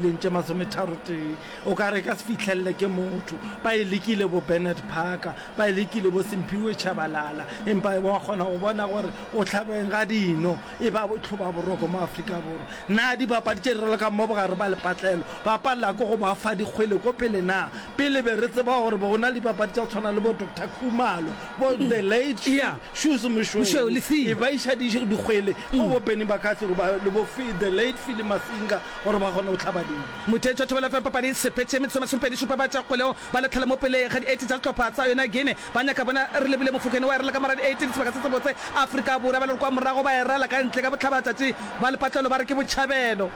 leng tše masometharotee o ka re ka se fihlelele ke motho ba e lekile bo Bernard Parker ba e lekile bo Simphiwe Tshabalala empa wa kgona go bona gore o tlhabeng ga dino e ba botlhoba boroko mo Afrika Borwa na dibapadi tše re lokang mo bogare ba lepatlelo ba palela ko go ba fa dikgwele ko pele na pele be re tseba gore be go na le dibapadi tša tshwana le bo Dr Khumalo bo the late yeah. Shoes Moshweu e ba iša dikgwele go bo Benny Bakatsi le bo the late Philly Masinga gore ba kgone go hlaba dino. Motheetša thobela fa papadi e sepetše. Metsotso e masomepedi šupa ba tša kgweleo ba latlhela mo pele ga di-eighty tša sehlopha sa yona Guinea. Ba nyaka bona re lebile mofokeng wa erela ka mor'a di-eighteen sebaka se sebotse. Afrika Borwa ba le re kwa morago ba erela ka ntle ka bohlabatšatši ba lepatlelo ba re ke botšhabelo.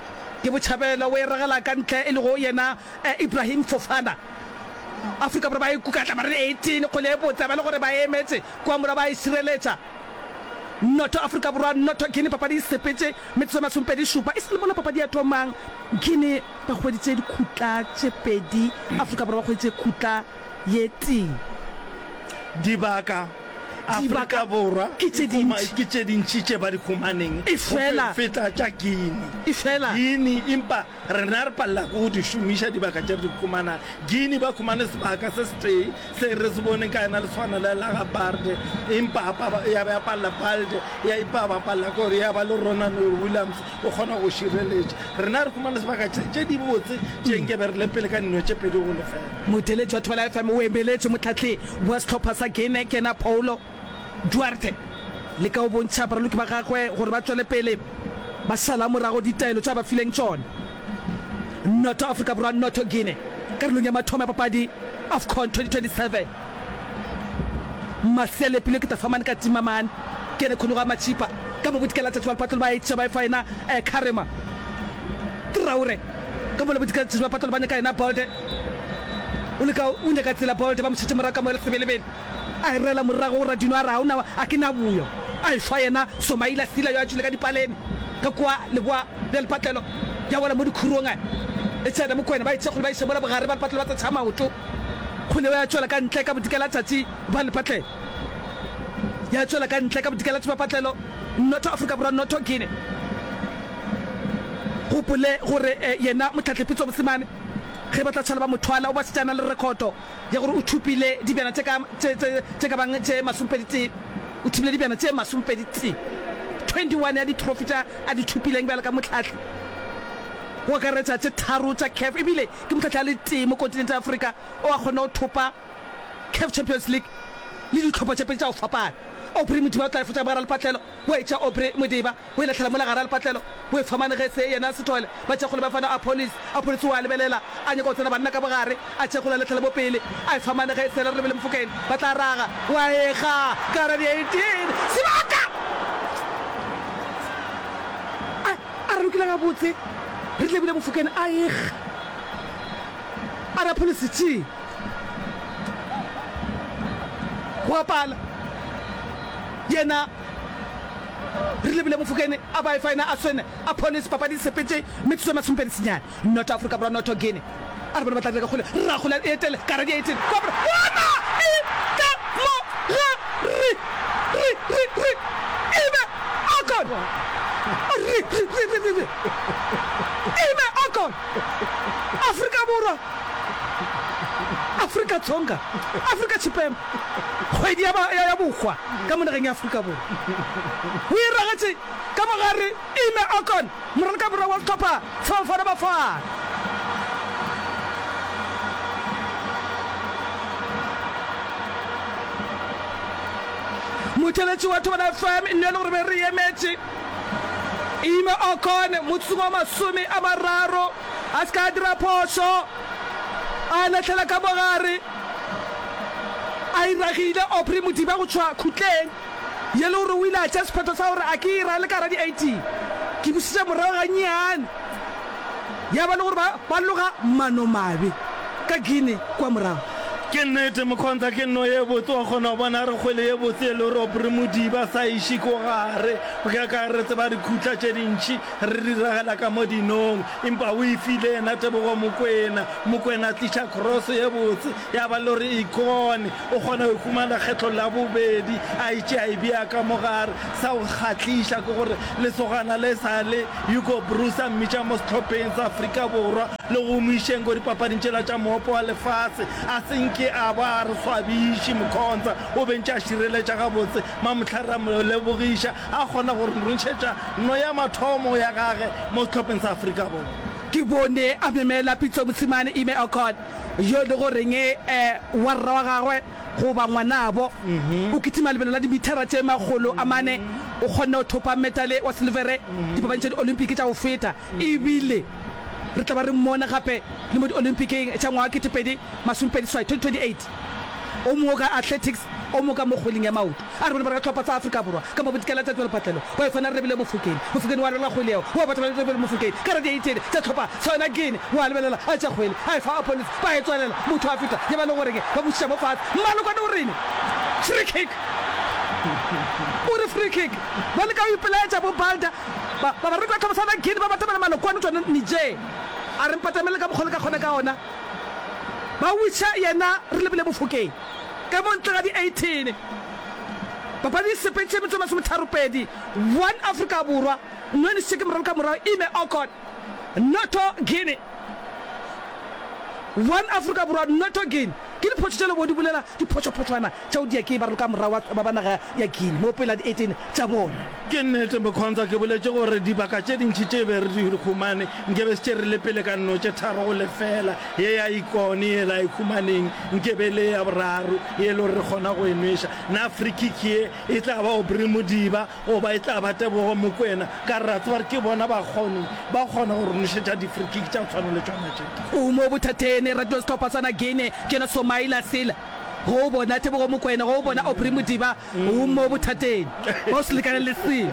Ke botšhabelo o eregela ka ntle e lego yena Ibrahim Fofana. Afrika Borwa ba e kukatla mor'a di-eighteen kgwele e botse ba le gore ba e emetše kwa morago ba e šireletša. Noto Afrika Borwa, noto Guinea Papadi e sepetše metsotso e masomepedi šupa e sa le mola papadi ya thomang Guinea ba hweditše dikhutla tše pedi Afrika Borwa ba hweditše khutla ye tee Dibaka Afrika Borwa ke tše dintši ke tše dintši tše ba di humaneng go feta tša Guinea Guinea empa Rena re palela ke go di šomiša dibaka tše re di humanang. Guinea ba humane sebaka se setee se re se boneng ka yena le swana le la ga Barde, empa ya ba ya palela Balde ya ipa ba palela gore ya ba le Ronan or Williams o kgona go šireletša. Rena re humane sebaka tše tše di botse tše nke be re le pele ka dino tše pedi go lefela. Motheletši wa Thobela FM o emeletše mohlahleng wa sehlopha sa Guinea ke yena Paulo. Duarte leka go bontšha baraloki ba gagwe gore ba tšwele pele ba sala morago ditaelo tša ba fileng tšona. Noto Afrika Borwa Noto Guinea karolong ya mathomo ya papadi Afcon 2027. Maselepelo ke tafamane ka timamane kene khone go a matšipa ka bo bodikela tšatši ba lepatlelo ba etša ba efa yena eh Karema Traore ka bo lebodikela tšatši ba lepatlelo ba nyaka yena Bolde o leka o nyaka tsela Bolde ba mo šetše morago ka mo le sebelebele A e rela morago go Radino a re, Ga o na, a ke na boyo. A e shwa yena Somaila Sila yo a tšwile ka dipaleme ka kua leboa bja lepatlelo ya wela mo dikhurong. A e tsena Mokwena ba e tšea kgole ba iše mola bogare ba lepatlelo ba tsetšha maoto kgole yeo ya tšwela ka ntle ka bodika la tšatši ba lepatlelo ya tšwela ka ntle ka bodika la tšbapatlelo Nnotho Afrika Borwa Nnotho Guinea. Gopole gore yena Motlhatlhepitso Mosimane ge ba tla tshwala ba mo thwala o ba setsana le rekhoto. ya gore o thopile dibjana tše ka, tše, tše, tše ka bang tše masomepedi-tee, o thopile dibjana tše masomepedi-tee, 21 ya ditrofi tša a di thopileng bjalo ka mohlahli, go akaretša tše tharo tša CAF, e bile ke mohlahli a le tee mo kontinente ya Afrika o a kgonne go thopa CAF Champions League le dihlopha tše pedi tša go fapana. Aubrey Modiba o tla efetša bogara lepatlelo, wa etša Aubrey Modiba. O e lahlela mola gare a lepatlelo, o e tshwamane ge se yena a se thole. Ba tšhekgole ba fana Apolis. Apolis o a lebelela, a nyaka go tsena banna ka bogare, a tšhekgole a latlhela mo pele, a e tshwamane ge se yena re lebele mofokeng. Ba tla raga. O a ekga ka gara di 18. Sebaka! A, a re lokile gabotse. Re lebile mofokeng, a ekga. A re Apolis, Tši! Go a pala. Yena. Re lebile Mofokeng a ba Efaena a swene a phole sepapadi di sepetše metsotso e masomepedi senyane noto Afrika Borwa noto Guinea a re bona ba tla dira ka kgole rra kgole a etele ka hara di 18 kwa gore bona e ka mo ga ri ri ri ri e be a gol a ri ri ri ri ri e be a gol Afrika Borwa Afrika Tsonga Afrika Tshipembe kgwedi ya ya ya bokgwa ka mo nageng ya Afrika Borwa. Go iragetše ka mo gare, Ime Okon, moraloka borwa wa Sehlopha sa Bafana Bafana. Motšweletši wa Thobela FM e nnile gore be re emetše Ime Okon motsotsong wa masome a mararo a se ka dira phošo. A lahlela ka mo gare. A e ragile Aubrey Modiba go tšwa khutleng ye le gore o ile a tšea sephetho sa gore a ke e rale ka gare ga di-18. Ke bušetša morago gannyane. Ya ba le gore ba, ba loga manomabe ka Guinea kua morago. Ke nnete, Mokhonza ke nno ye botse, wa kgona go bona re kgwele ye botse ye le gore Aubrey Modiba a sa e iše ko gare. Bjaka re tseba dikhutla tše dintši re di ragela ka mo dinong. Empa o e file yena tebogo Mokwena. Mokwena a tliša cross ye botse, ya ba le gore e kone. O kgona go humana kgetlo la bobedi, a e tšea e bea ka mo gare. Sa go kgahliša ke gore lesogana le sa le Hugo Broos a mmitša mo sehlopheng sa Afrika Borwa le go mo išeng ko dipapading tšela tša Mohope wa Lefase. A se nke a ba a re swabiše, Mkhonza o bentše a šireletša gabotse, Mamohlare a mo lebogiša. A kgona go re ntšhetša no ya mathomo ya gage mo sehlopheng sa Afrika Borwa. Ke bone a memela Pitso Mosimane Ime Okot, yo e lego reng e wa rra wa gagwe goba ngwanabo. O kitima lebelo la dimithara tše makgolo a mane, o kgonne go thopa metale wa silvere Dipapading tša Diolympiki tša go feta e bile re tla ba re mmone gape le mo Diolympikeng tša ngwaga wa kete pedi masomepedi seswai, 2028. O mooka athletics, o mooka mo kgweleng ya maoto. A re bona ba re ka tlhopha tsa Afrika Borwa ka mo bo dikela tsa tswelopatlelo ba yo tshwana re lebile Mofokeng. Mofokeng wa lwela kgwele yeo wa batho ba lebile Mofokeng ka radiaitene tsa tlhopha sa yona Guinea wa lebelela a tša kgwele a e fa opponents ba e tswalela motho a feta ye ba le goreng ba bušiša mo fase. Mmalokwane o reng free kick o re free kick ba leka go ipelaetša bo Balda ba ba re ka tlhopha sa yona Guinea ba batamela Malokwane o tšwana Niger a re mpatamele ka mokgwa le ka kgona ka ona ba wiša yena re lebile Mofokeng. Ka mo ntle ga di 18 papadi e sepetše metsotso e masometharopedi, one Afrika Borwa Nwenisike moralo ka morago Ime Okot, Noto Guinea one Afrika Borwa Noto Guinea ke diphošo tše lebo di bolela diphošophoswana tšeo diakei ba raloka morago ba ba naga ya Guinea mo pele ga di 18 tša bona. Ke nnete, Mokhontsa, ke boletše gore dibaka tše dintši tše be re di humane nke be se tše re le pele ka nno tše tharo go lefela. Ye ya Ikone yela e humaneng nke be e le ya boraro ye e le gore re kgona go e nweša. Na free-kick ye e tla ba Aubrey Modiba goba e tla ba Tebogo Mokoena? Ka re ra tseba gore ke bona ba kgone ba kgona go re nwešetša di-free-kick tša go tshwana le tšona tše. O mo bothateng, e ratiwa sehlopha sa Nagene, ke yena Somaila Sila, go bona Tebogo Mokoena, go bona Aubrey Modiba. O mo bothateng ba o se lekane le selo.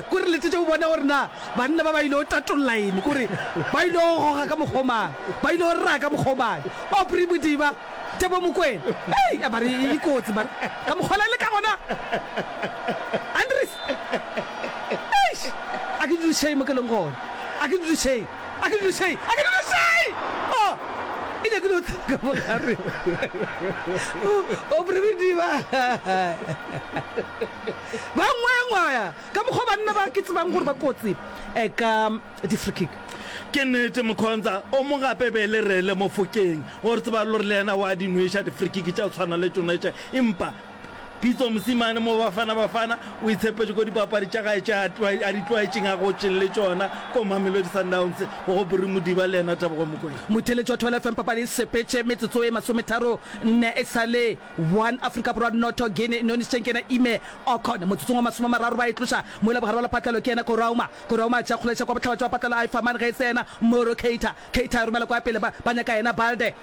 Kore letšetše o bone gore na banna ba ba ile o tatolla eng, kore ba ile o goga ka mokgwa o mang, ba ile o raya ka mokgwa o mang. Aubrey Modiba, Tebo Mokwena, hei a ba re e kotsi man, ka mokgwa la le ka gona. Andries, eish, a ke dudišeng mo ke leng gona, a ke dudišeng. A ke dule šai, a ke dule šai! O, ke nyakile go tla ka mo gare. O, o prebedi ba. Ba ngwayangwaya, ka mokgwa banna ba ke tsebang gore ba kotsi, eh, ka di-free kick. Ke nnete, Mokhonza, o mo gape be le rele mo fokeng. O re tseba lore le yena wa di nweša di-free kick tša go tshwana le tšona tše, empa. Pitso mosimane mo Bafana Bafana o itshepetše ko dipapadi tša gae tše a di tlwaetšeng a gotšeng le tšona ko Mamelodi Sundowns go go Bury Modiba le yena Tebogo Mokoena. Motheeletši wa Thobela FM papadi e sepetše metsotso e masometharo nne e sa le one Afrika Borwa noto Guinea e nonišitšeng ke yena Ime Okon motsotsong wa masome a mararo ba e tloša mola bogare wa lepatlelo ke yena Korauma Korauma a tšea kgoleša kwa bohlabja wa patlelo a e fa man ge e se yena Moro Keita Keita a e romela kwa pele ba ba nyaka yena Balde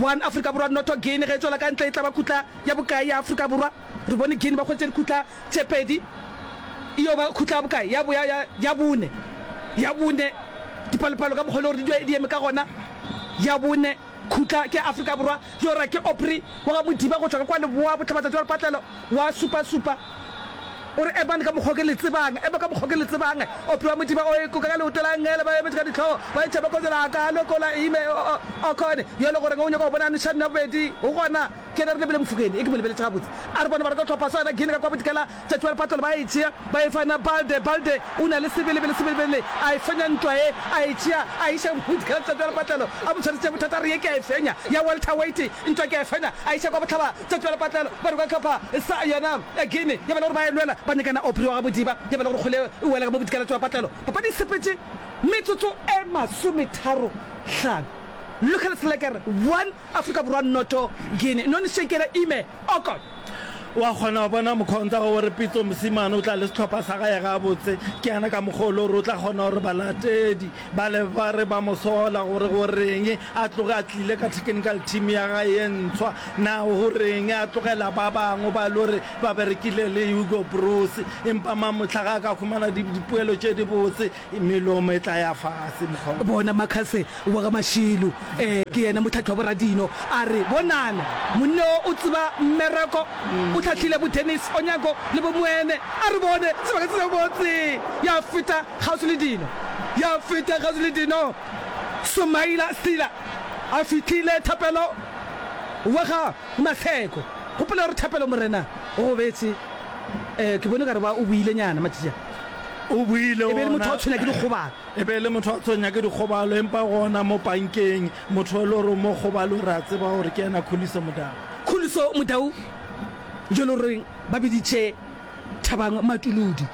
One Afrika Borwa Noto Guinea ge e tšwela ka ntle e tla ba kutla ya bokae ya Afrika Borwa? Re bone Guinea ba hwetše dikutla tše pedi e yo ba kutla ya bokae? Ya, ya, ya, ya bone. Ya bone. Dipalopalo ka mokgwa o le gore di, di eme ka gona. Ya bone kutla ke Afrika Borwa. Yo ra ke Opry wa ga Modiba go tšwa ka kwa leboa botlabatsatsi wa lepatlelo wa supa-supa. O re epang ka mokgwa o ke le tsebang, epa ka mokgwa o ke le tsebang, Ope wa Modiba o ekoka ka leoto la ngele, ba emetše ka dihlogo, ba etšha ba kotšela a ka loko la ime, o, o, o khone, yo e le goreng o nyaka go bona Nushan ya bobedi, go gona, ke yena re lebile Mofokeng, e ke mo lebeletše gabotse, a re bona ba rata go hlopha sona, Gene ka kwa bodikela, tšatši wa lepatolo ba e tšea, ba e fa na Balde, Balde o na le sebelebele, sebelebele a e fenya ntwa ye, a e tšea, a e iša go bodikela, tšatši wa lepatlelo a mo tshwaretše bothata, a re ye ke a e fenya, ya welterweight ntwa ke a e fenya, a e iša kwa bohlaba, Tšatši la lepatlelo, ba roka Khapha sa yona ya Guinea ya ba le gore ba e lwela ba nyakana Opry wa Gabodiba ya ba le gore kgole e wela ka mo bodikaletšo wa patlelo. Papadi e sepetše metsotso e masometharo hlano. Local Slacker one, Afrika Borwa noto, Guinea none Shekera Ime Okot. O a kgona go bona mokgwa o ntwago gore Pitso mosimane o tla le sehlopha sa gae gabotse. Ke yana ka mokgwa o le gore o tla kgona gore balatedi Bale ba re ba mo sola gore go reng a tloge a tlile ka technical team ya ga ye ntshwa na go reng a tlogela ba bangwe ba lo re ba berekile le Hugo Broos empa ma motlha ga ka khumana dipoelo tše di botse melomo e tla ya fase mokgwa bona Makase wa ga Mashilu eh ke yena motlhatlhi wa boradino a re bonana monne o o tseba mmereko o tlhatlhile bo Dennis Onyango le bo Moene a re bone sebaka se se botse ya feta Kgauswi le dino, ya feta kgauswi le dino, Sumaila Sila a fihlile thapelo wa ga Maseko. Gopola gore thapelo morena o go betse, eh, ke bone gare ba o buile nyana matšatši a. O buile E be e le motho ona. wa tshwenya ke dikgobalo. E be e le motho wa tshwenya ke dikgobalo, empa gona mo pankeng, motho e le gore mo kgobalo re a tseba gore ke ena Khuliso Modau. Khuliso Modau, jo le goreng ba biditše. Thabang Matuludi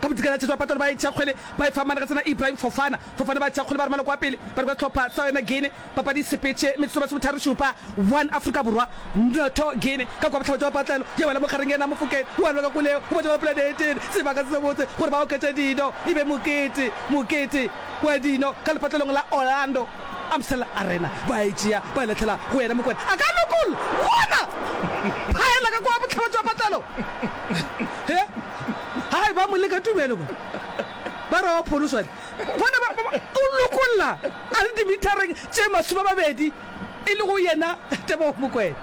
ka bodikela tshetswa patalo ba e tšha kgwele ba e fa Managatsana Ibrahim Fofana Fofana ba tšha kgwele ba romela kwa pele ba re kwa tlhopha sa yona Guinea papadi sepetše metsotso masometharo šupa one Afrika Borwa notho Guinea ka kwa bohlabetše wa patlelo ya wela mogareng yena Mofokeng o a lwa ka koleo go batša ba polane e tene sebaka se se botse gore ba oketše dino e be mokete mokete wa dino ka lepatlelong la Orlando Amstel Arena, ba e tšea, ba e latlhela go yena Mokwena, a ka lokolla, bona! Phaela ka kwa bohlaba jwa patlelo. He, hai, ba mo leka tumelo ba. Ba re wa pholoswa le. Bona, ba, ba, o lokolla, a le dimithareng tše masomamabedi, e le go yena Tebogo Mokwena.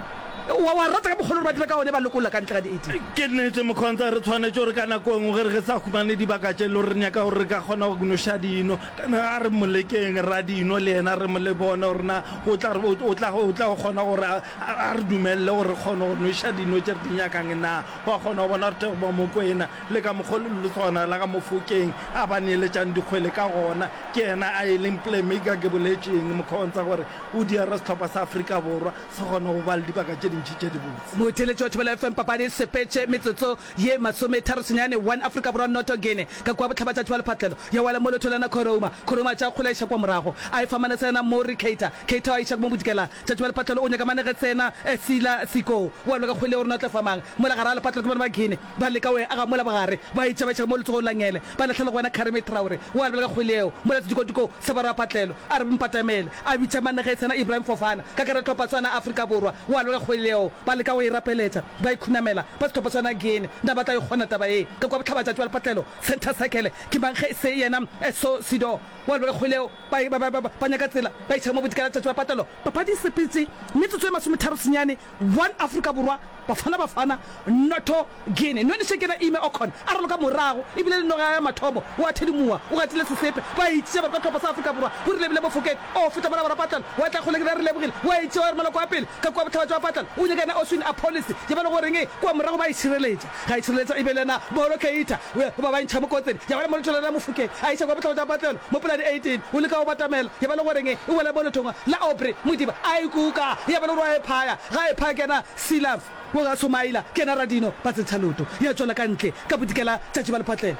Wa, wa rata ka mokgwa le gore ba dira ka gone, ba lokolla ka ntle ga dieti. Ke nnete, Mokhonza, re tshwanetše gore ka nako e nngwe ge re sa humane dibaka tše e le gore re nyaka gore re ka kgona go noša dino, Kana a re mo lekeng ra dino le yena re mo le bone gore na o tla re o tla o tla kgona gore a, a re dumelele gore re kgone go nweša dino tše re di nyakang na wa kgona go bona Rutego ba Mokwena le ka mokgwa le letsogwana la ka Mofokeng a ba neeletšang dikgwele ka gona ke yena a e leng playmaker ke boletšeng Mokhontsa gore o diara sehlopha sa Afrika Borwa se kgone go ba le dibaka tše dintši tše dibotse. Motheeletši wa Thobela FM papadi e sepetše metsotso ye masometharo senyane 1 Afrika Borwa Noto Gene ka kua bohlabatšatši bja lephatlelo ya wela mo lotho la na Korouma Korouma a tšea kgola a iša kua morago a e fa Manesena Morri Keita Keita a iša mo Bodikela tšatši bja lephatlelo o nyaka Manegesena Sila Siko o a lwa ka kgwele ya go re na o tla fa mang mola gare ga lephatlelo ke bona ba Gene ba leka go e aga mola bogare ba e tšea ba iša ka mo letsogong la Ngele ba lahlelwa ke wena Karimi Traore o a lwa ka kgwele yeo mola Sedikotiko sa barwa ba phatlelo a re Mpatamele a bitša Manegesena Ibrahim Fofana ka karetlwa Patswana Afrika Borwa o a lwa ka kgwele yeo ba leka go e rapeletša Ba ikhunamela ba sethopo sa Nagini. Na ba tla e kgona taba ye? Ka kwa bohlabatša tšwa lepatlelo, Centre Circle, ke mang ge e se yena Esso Sido wa Lwelekgoleo? Ba, ba, ba, ba, ba nyaka tsela ba iša mo bodikaratšha tšwa patlelo. Papadi e sepetše metsotso e masometharo senyane, one Afrika Borwa, Bafana Bafana, notho Guinea. Nonešhe ke yena Ime Okon a raloka morago e bile le noga ya gagwe mathomo. O a thedimoa, o gatile sesepe, ba itšea ba kwa tlopo sa Afrika Borwa, Borile Bile Mofokeng. O feta mola bara Patlan wa tla kgole ke re re lebogile wa itšewa re maloko a pele ka kua bohlaba jwa Patlan o nyaka yena Oswin a policy ye ba le goreng e kua morago ba e šireletša ga e šireletša e be le yena Bolo Keita we ba ba ntšha mokotsebe ya ba le moloto le yena Mofokeng a iša kua bohlaba jwa Patlan mo poladi 18 o leka o batamela ye ba le goreng e e wela mo lethongwa la Aubrey Modiba a e kuka ya ba le gore wa e phaya ga e phaya ke yena Silas wo ga Somaila ke yena Radino ba tsentsha loto ya tšwela ka ntle ka bodikela tša Jebel Patlan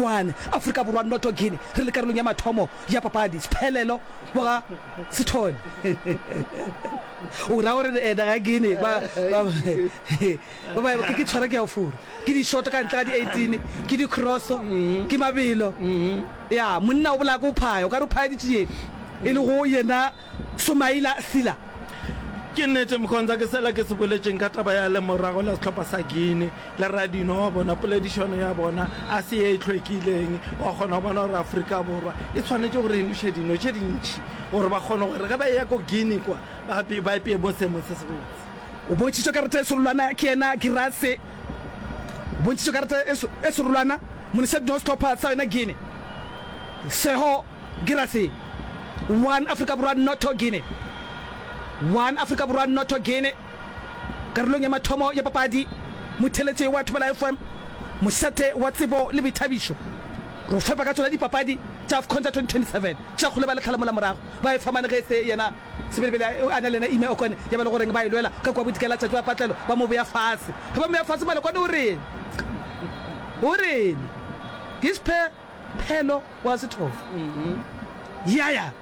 one Afrika Borwa Noto Guinea re le karolong ya mathomo ya papadi, Sphelelo boga Sithole. O ra gore ena ga ke ne ba ba ba ba ke ke tshwara ke ya furu. Ke di short ka ntle ga di 18, ke di cross, ke mabelo. Ya monna o bolaya ko phaya, o ka re phaya di tšiyeng. E le go yena Soumaila Sylla, Ke nnete Mkhonza ke sela ke se boletšeng ka taba ya lemorago la sehlopha sa Guinea le Radinho wa bona, poledišano ya bona a se ye e hlwekileng. Wa kgona go bona gore Afrika Borwa e swanetše gore e noše dino tše dintši gore ba kgone gore ge ba eya ko Guinea kwa ba ba epeye mo seemong se sebotse. O bontšhitšwe karata e serolwana ke yena Guirassy. O bontšhitšwe karata e serolwana monošeding wa sehlopha sa yona Guinea, Seho. Girase, one, Afrika Borwa Noto Guinea, one, Afrika Borwa Noto Guinea, Karolong ya mathomo ya papadi, Motheletse wa Thobela FM, Mosete wa Tsebo le Boithabišo, Ro fepa ka tsona dipapadi tša Afcon tša 2027. Tšakgolo ba le tlhalamola morago ba e famane ge se yena Sebelebele a na le yena Ime Okone ya ba le goreng ba e lwela ka kua bodika la tšatši wa patlelo ba mo bea fase. Ge ba mo bea fase Malokwane o reng? O reng? Ke sphe. Phelo wa Sethofo. Ya, ya,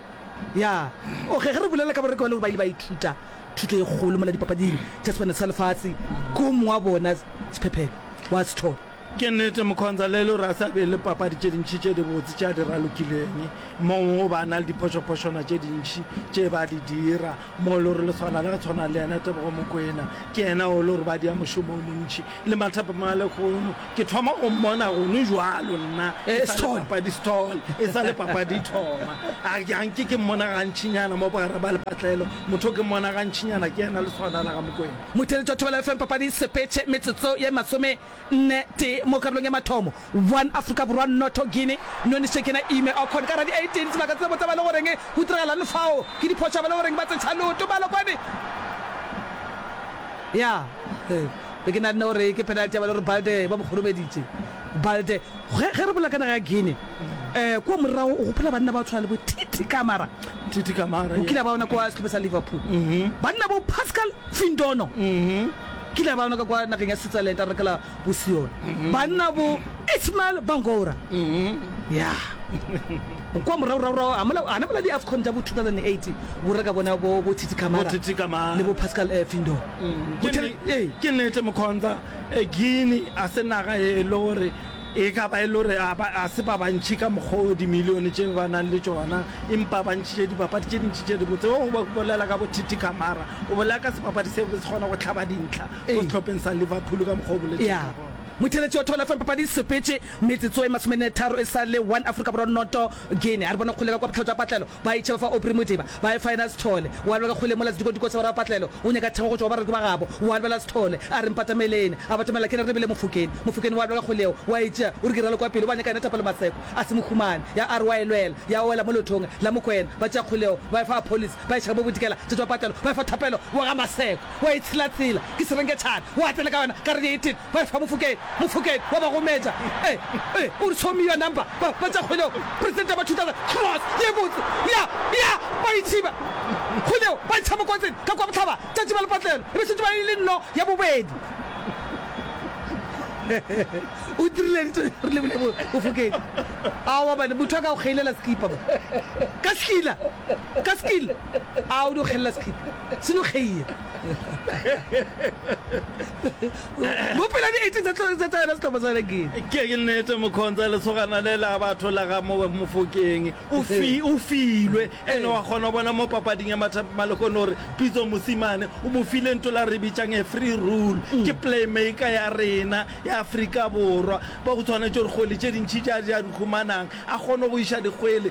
ya. Okay, ge re bolela ka bareki ba lego ba ile ba ithuta thuto e kgolo mola dipapading tša Sebanelo sa Lefase, ke o mongwe wa bona Sephephelo wa Sethofo. Ke nnete, Mokhonza, le lore a sa be le papadi tše dintši tše dibotse tše a di ralokileng. Mongwe o ba a na le diphošophošwana tše dintši tše ba di dira. Mo lo re le tshwana le tshwana le yena Tebogo Mokwena, ke yena o lo re ba dia mošomo o montši le mathapo ma lekgono. Ke thoma go mmona gono jwalo nna e sa le papadi stall, e sa le papadi thoma. A ga nke ke mmona gantšinyana mo bogare ba lepatlelo, motho o ke mmona gantšinyana ke yena le tshwana la ga Mokwena. Motheletšwa Thobela FM papadi sepetše metsotso ye masome. Nne, tee, mo karolong ya mathomo. One, Afrika Borwa, Nnotho, Guinea, Noni, Sekena, Ime, Okhon, ka ra di 18 sebaka se sebotsa ba le goreng go tiragalang fao ke diphoša ba le goreng ba tsetsha leoto balo kwani ya be ke nanne gore ke penalty ya ba le gore Balde ba mo kgoromeditše Balde ge ge re bolela ka naga ya Guinea um kua morago o gopola banna ba tshwana le bo Titi Kamara Titi Kamara o kile ba ona kwa sehlopha sa Liverpool banna bo Pascal Findono Ke ile ba no ka kwa nageng ya Switzerland a rakela Bosion banna bo Ismael Bangora. Ya kwa moragoragorago a mola ana mola di Afcon tša bo 2008 bo reka bona bo bo Titi Kamara, bo Titi Kamara le bo Pascal eh, Findo. Ke nete Mokhonza, Guinea a se naga e le gore E ka ba e le gore ga se ba bantši ka mokgwa wo dimilione tše ba nago le tšona, empa ba ntšhitše dipapadi tše dintši tše dibotse. Wo o bolela ka bothiti Kamara, o bolela ka sebapadi seo se kgona go hlaba dintlha ko sehlopheng sa Liverpool ka mokgwa o boletšego gona. Motheletši wa Thobela FM, papadi e sepetše metsotso e masomenne tharo e sa le one Afrika Borwa noto Guinea. A re bone go kgoleka kwa bohlatšwapatlelo Ba itšheba fa Opry Modiba, ba e faena Sithole. O a lebega kgole mola sedikotiko sa borapatlelo, o nyaka thekgo go tšwa go bareki ba gabo. O a lebela Sithole, a re, Mpatameleni. A batamela ke re, Re bile Mofokeng. Mofokeng o a lebega kgoleo, o a e tšea, o re, Ke ralokwa pele, o ba nyaka yena Thapelo Maseko. A se mo humane. Ya a re o a e lwela, ya wela mo leotong la Mokwena. Ba tšea kgoleo, ba e fa Apholisi, ba e šega mo bodikela tša tšwa patlelo, ba e fa Thapelo wa ga Maseko. O a e tshilatsila, ke serenketšhane, o a tsena ka yona ka re, Dithin! Ba efa Mofokeng, Mofokeng wa ba gometša. E, e, o re, Show me your number. Ba, ba tša kgwele yeo, Presidente ba thutana, Cross, ye e botse. Ya, ya, ba e tšhiba. Kgwele yeo, ba e tšha mokwatseng, ka kwa bohlaba, tšatši ba le patlelo. E be šetše ba e le nno ya bobedi. O tirileditše, re lebile mo, Mofokeng. Aowa bane, motho a ka go kgeilela sekipa mo. Ka sekila, ka sekila. A, o di go kgelela sekipa. Tshilogeye. Mo pela di 18 tsa tlhole tsa tsaya setlhopha sa Renegade. Ke nnete Mokhonza lesogana le la batho la ga Mofokeng o fi o filwe ene wa kgona go bona mo papading ya mathapi malekone gore Pitso Mosimane o mo file nto la re bitšang a free rule ke playmaker ya rena ya Afrika Borwa ba go tshwanetse gore kgwele tše dintšhi ja ja di humanang a kgone go iša dikgwele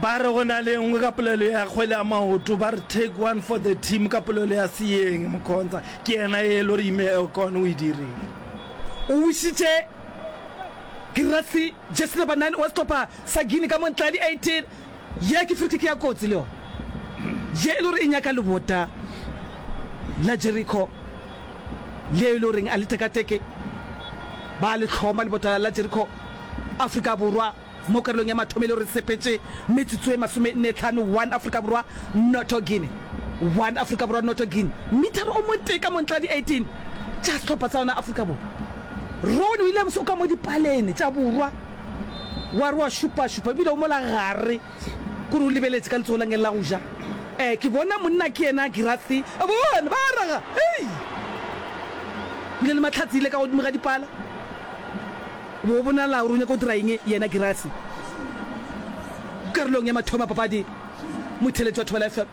ba re go na le nngwe ka polelo ya kgwele ya maoto ba re take one for the team ka polelo ya seeng mokhonza ke yena e lo re ime elcon o e direng o wisitše kirasi jesi number 9 wa setlhopha sa guine ka montladi 18 ye ke frikiki ya kotsi le yone ye e lo re e nyaka lebota la jericho le e lo reng a le tekateke ba le tlhoma lebota la jericho afrika borwa Mo karolong ya mathomelo re sepetše metsotso e masomenne-tlhano, one Afrika Borwa, noto Guinea, one Afrika Borwa, noto Guinea, mithara o motee ka montla di 18 tša sehlopha sa yona Afrika Borwa. Rowan Williams o ka mo dipalene tša borwa wa re wa šupašupa e bile o mola gare kore o lebeletše ka letsogo la ngele la go ja. Ee, ke bona monna ke yena Girassi, a bona ba raga, hei! Bile le mahlatse ile ka godimo ga dipala. Bo bonala gore o nyaka go dira eng yena Girase? Karolong ya mathomo ya papadi, motheletši wa Thobela FM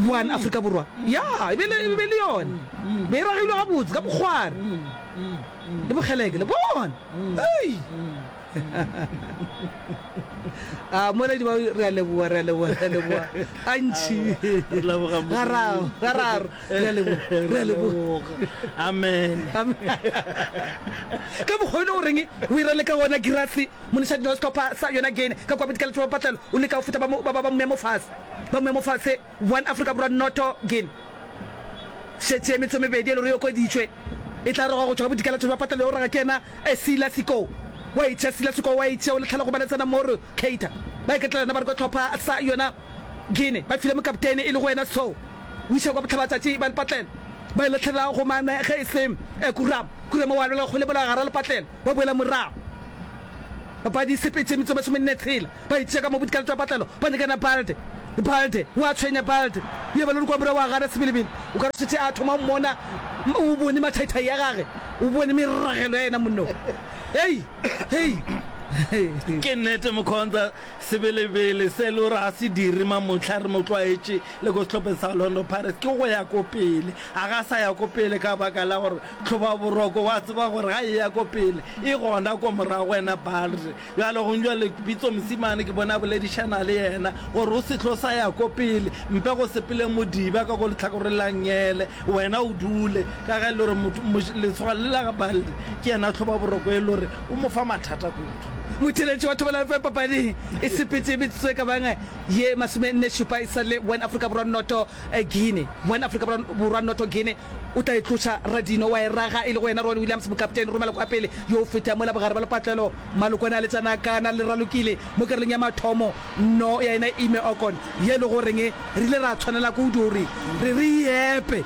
One Afrika Borwa, ya e be e be e le yona be e ragilwe gabotse ka bokgware le bokgeleke. Le bona? Hei! A moeledi wa re a leboga, re a leboga, re a leboga. Antši. Re leboga Modimo. Gararo, gararo. Re a leboga. Re a leboga. Amen. Ka mokgwa yone o reng o ira le ka wona girasi moneša dino sehlopha sa yona gene ka kwa bodikela tšoba patlelo o leka go feta ba ba ba moemo fase ba moemo fase one afrika borwa noto gene šetše metso mebedi e le gore yo koditšwe e tla roga go tšwa ka bodikela tšoba patlelo yo raga ke yena e sila siko wa itšha sila siko wa itšha o le tlhalogo ba le tsena mo re cater ba iketlela yona ba re kwa tlhopha sa yona Gene, ba file mokapteine e lego yena Sho, o iša kwa bohlabatšatši ba lepatlelo. Ba e lahlelela go mane ge e se e Kurama. Kurama o alwela kgole mola gare lepatlelo, ba boela morago. Papadi e sepetše metso e masome nne tshela. Ba itiša ka mo bodikalo tša patlelo, ba nyakana Balde. Balde, o a tshwenya Balde, o ya balodi kwa morago wa gana sebelebele. O ka re o šetše a thoma go mmona, o bone mathaithai a gage, o bone meragelo ya yena monnong. Hei! Hei! Ke nnete Mokhonza, Sebelebele se e le gore ga se dire mamohla re mo tlwaetše le ko sehlopeng sa Orlando Pirates ke go ya ko pele. A ga sa ya ko pele ka baka la gore Tlhobaboroko wa tseba gore ga e ya ko pele e gona ko morago yena Balde. Bjale gong bjale Pitso Mosimane ke bone a boledišana le yena gore o se tlo sa ya ko pele mpe go sepele Modiba ka ko lehlakoreng la Ngele wena o dule ka ge e le gore letshwao le la ga Balde ke yena Tlhobaboroko e le gore o mo fa mathata kudu. Motheeletši wa thobalano fa papading e sepetše metsotso e ka bang ye masomenne-šupa e sa le one Afrika Borwa-noto Guinea. One Afrika Borwa-noto Guinea o tla e tloša Radinho wa e raga e lego yena Rowan Williams, mokapteine ruri maloko a pele yo o fetang mola bogare bja lepatlelo Malokwane a le tsanakana le ralokile mo karolong ya mathomo no ya yena Ime Okon ye e lego goreng re ile ra tshwanela kudu gore re re e epe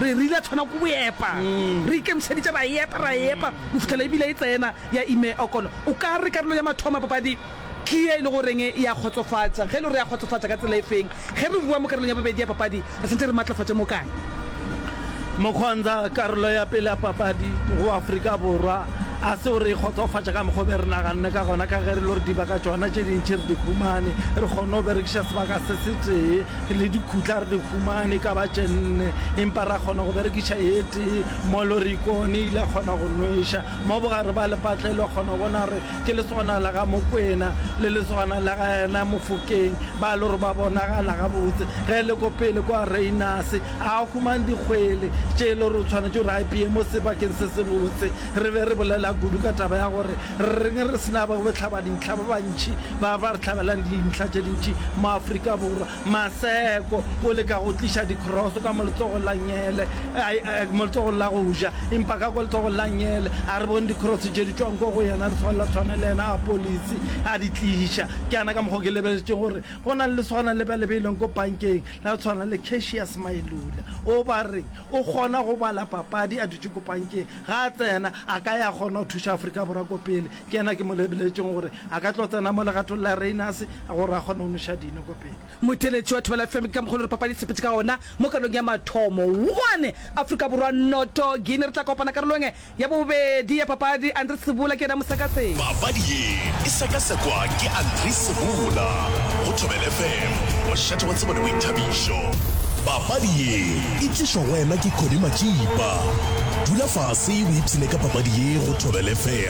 re re ile tshwana ku epa re ikemišeditše ra epa ra epa go fihlela e bile e tsena ya Ime Okolo, o ka re karolo ya mathomo ya papadi ke ye e lego goreng ya kgotsofatša. Ge e le gore ya kgotsofatša ka tsela e feng? Ge re boa mo karolong ya bobedi ya papadi re swanetše re matlafatše mo kae? Mokgwanza, Karolo ya pele ya papadi go Afrika Borwa ga se gore e kgotsofatša ka mokgwa o be re naganne ka gona ka ge re le gore dibaka tšona tše dintši re di humane, re kgonne go berekiša sebaka se setee le dikhutla re di humane e ka ba tše nne empa ra kgona go berekiša e tee mo Lorikone e ile ya kgona go nweša. Mo bogare ba lepatla e le kgona bona gore ke lesogana la ga Mokwena le lesogana la ga yena Mofokeng ba le gore ba bonagala gabotse. Ge le ko pele kwa Reinase a humang dikgwele tše e le gore o tshwanetše gore a ipeye mo sebakeng se sebotse. Re be re bolela kudu ka taba ya gore reng re se na bohlabadintlha ba bantši ba ba re hlabelang dintlha tše dintši mo Afrika Borwa. Maseko o leka go tliša dikroso ka moletsogo la Nyele, moletsogo la go ja, empa ka kwa letsogo la Nyele a re bone dikroso tše di tšwang ko go yena, di swanela tshwane le yena a polisi a di tliša. Ke yana ka mokgwa ke lebeletše gore go na le leswana le ba le beileng ko pankeng la tshwana le Cassius Mailula. O ba reng? O kgona go bala papadi a dutše ko pankeng, ga a tsena a ka ya kgona go thuša Afrika Borwa ko pele. Ke yena ke mo lebeletšeng gore a ka tlo tsena mo legatong la Rayners gore a kgone go noša dino ko pele. Motheeletši wa Thobela FM ke ka mokgwa le re papadi e sepetše ka ona mo karolong ya mathomo. One Afrika Borwa noto Guinea. Re tla kopana karolong ya bobedi ya papadi. Andri Sebola ke yena mosekaseki. Papadi ye e sekasekwa ke Andri Sebola go Thobela FM, mošate wa tsebo le boithabišo. Papadi ye e tlišwa go wena ke Connie Matšipa. Dula fase o ipshine ka papadi ye go Thobela FM.